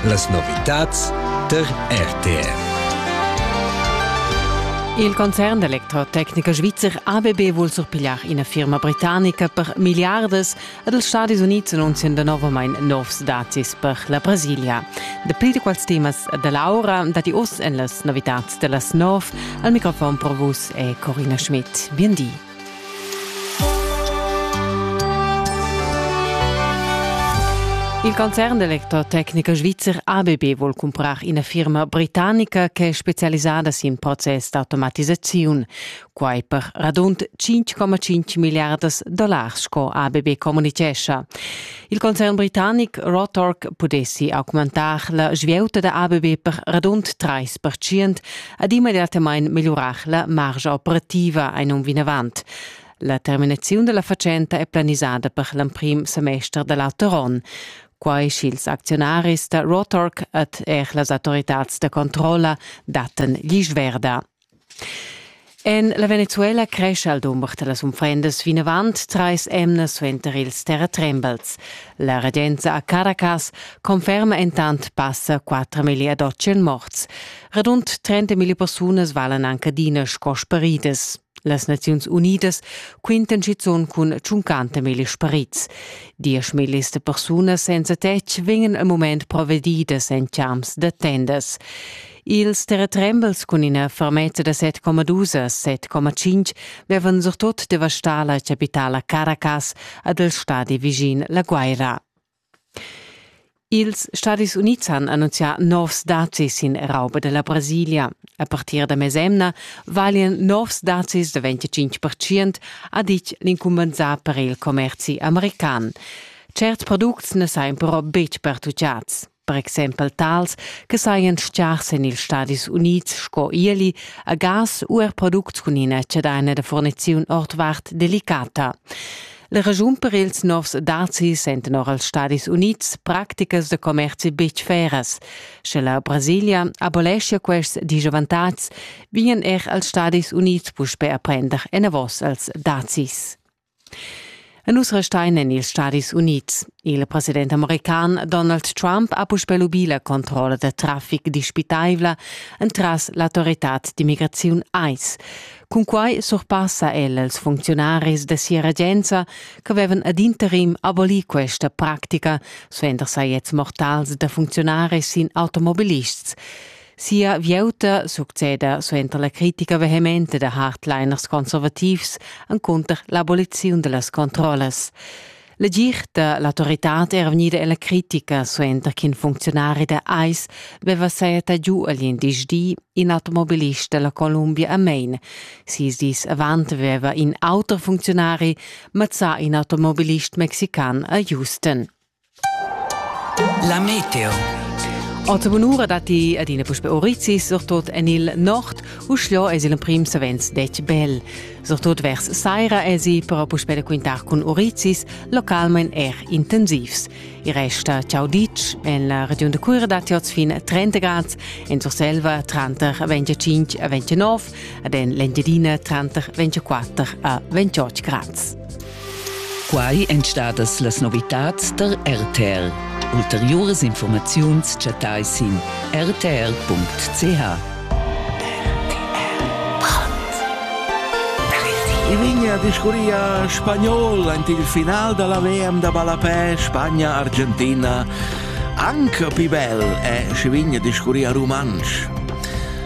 Las novitads tar RTR. Il concern d'electrotecnica svizzer ABB vuol surpigliar ina firma britannica per miliardas ed els Stadis Unids annunzian novamain novs dazis per la Brasilia. Dapli di quals temas da Laura dati oz en las novitads da las nov. Al microfon pro vus è Corina Schmidt. Bien di. Il concern d'electrotecnica svizzer ABB vuol cumprar ina firma britannica ch'è specialisada sin process d'automatisaziun. Quai per radund 5,5 milliardas dollars, sco ABB communitgescha. Il concern britannic Rotork pudessi augmentar la svieuta da ABB per radund 3 ed immediatamain megliurar la margia operativa ein um vinavant. La terminaziun della fatschenta è planisada per l'emprim semester dell'auter onn. Quai sch'ils actionaris da Rotork ed er las autoritads da controlla datten gli sverda. En la Venezuela crescha il dumber da las unfrendas vinavant trais emnas suenter ils terratrembels. La regenza a Caracas conferma entant passa 4.200 morts. Radund 30.000 persunas valan anche adina sco sparidas. Las Naziuns Unidas quintan schizunt cun 50.000 sparits. 10.000 de persunas senza tetg vegnan al mument provedidas en champs da tendas. Ils terretrembels cun ina fermezza da 7,2 7,5 vevan surtut devastà la chapitala Caracas ad el stadi vischin la Guaira. Ils Stadis Unids han annunzià novs dazis sin rauba della Brasilia. A partir da mesemna valian novs dazis da 25% ha ditg l'incumbensà per il commerzi american. Cert products na sajan però betg pertucciads. per exempel tals che sajan stgars en ils Stadis Unids sco ieli a gas u er products cun ina chadaina da furniziun ordvart delicata. La regiun per ils novs dazi senten or als Stadis Unids practicas da commerzi betg feras. Sche la Brasilia abolescia quests disavantatgs, vien er als Stadis Unids puspè a prender enavos als dazis. E nus restein en ils Stadis Unids. Il president american Donald Trump ha puspè lubì la controlla da traffic dispitaivla entras l'autoritad d'immigraziun ICE. Cunquai surpassa el als funcziunaris da sia regenza ch'avevan ad interim abolì questa practica, suenter sajetts mortals da funcziunaris sin automobilists. Sia vieuta succeda suenter la critica vehementa da hardliners conservativs encunter l'aboliziun dellas controllas. Legir da l'autoritad era vegnida ella critica suenter ch'in funzionari da ICE veva seta giu agl indisch di in automobilist dalla Columbia a Maine. Sis dis avant veva in auter funzionari mazzà in automobilist mexican a Houston. La meteo. Ota bunura datti adina puspe orizis, surtut en il nord, uschia es il emprim savens detg bel. Surtut vers saira esi però puspè da quintar cun orizis, localmain er intensivs. I resta ciao ditg, en la regiun da Cuira datti oz fin 30 grad, en Surselva tranter 25 e 29 ed en l'Engiadina tranter 24 a 28 grads. Quai èn stadas las novitads tar RTR. Ulteriuras informaziuns chattai sin rtr.ch. I vigna discurria spagnol ant il final da la VM da ballapè Spagna-Argentina. Anche più bel è si vigna discurria rumantsch.